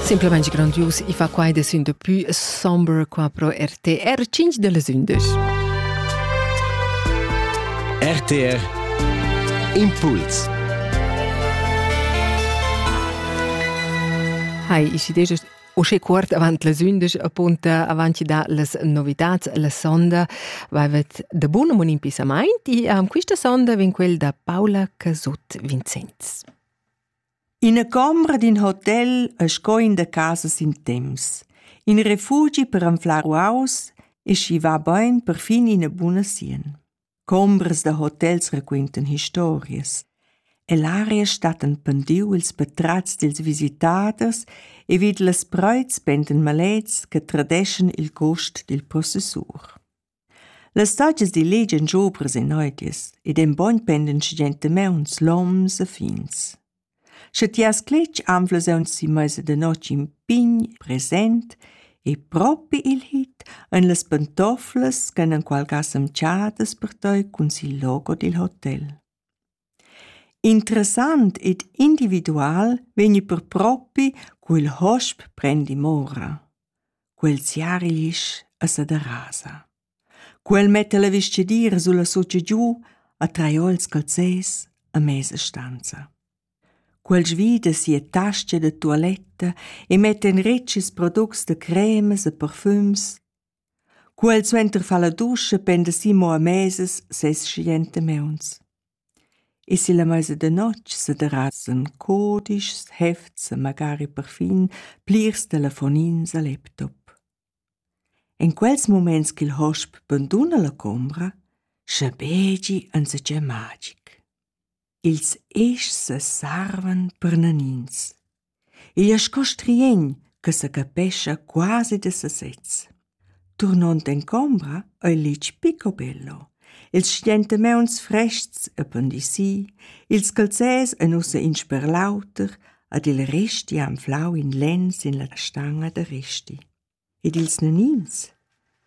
Simplamain grandius, i fa quai de sün de pü somber qua pro RTR 5 de les 11. RTR Impuls Hai, ich idee Usche cuort avant les undisch apunta avanti da las novitats la sonda vavet de bun un impissamaint e am quista sonda vin quel da Paula Casut Vincenz. Ina combra d'in hotel e sco in da casa sin temps. In refugi per anflar uaus e schi va bein perfin ina buna sien. Combras da hotels raquentan historias. E l'aria stat en pendiu ils patratgs dils visitaders e vid las preits pentan malets che tradeschan il gust dil possessur. Las stagias dil letg ein giu presenneudias ed ein bogn pendan gentamauns, loms e fins. Sche ti has cletg anflas aunzi meisa da notg in pign present e propi il hit ein las pantoflas ch'han enqual ga semchadas per tei cun sil logo dil hotel. Interessant ed individual vegni per propi cu il hosp prendi mora. Quel siari l'isch e sa derasa. Quel metta la vestgidiera sulla socia giu a traiol scalzes a mesa stanza. Quel svida sia tascha da tualetta e metta en retgs products da cremas e parfums Quel suenter fa la duscha penda Simo a mesas ses schienta meuns. E si la meisa da notg sederasan codischs, hefts e magari perfin plirs telefonins al laptop. En quels muments ch'il hosp banduna la combra, schabegi enzatgei magic. Ils eschs sarvan per nanins. Igl è sco striegn che sa capescha quasi da sasez. Turnond en combra ei litg pico bello. Ils stentamauns frests e pandisii, ils calzers ein ussa in sper l'auter, ad il resti ha anflau in lenn sin la stanga da resti. ed ils nanins.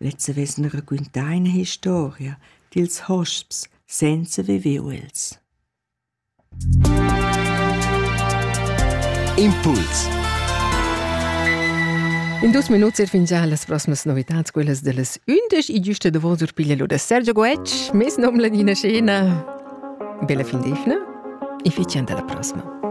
Lezza vessen raquintà ina historia dils hosps senza viver els. Impuls In dus minuts er fin già las proximas novitads, quellas dellas 11 e giusta da vos urpiglia lo da Sergio Goetsch, mes nom Ladina Scena. Bella fin d'efna e fician dalla prossima.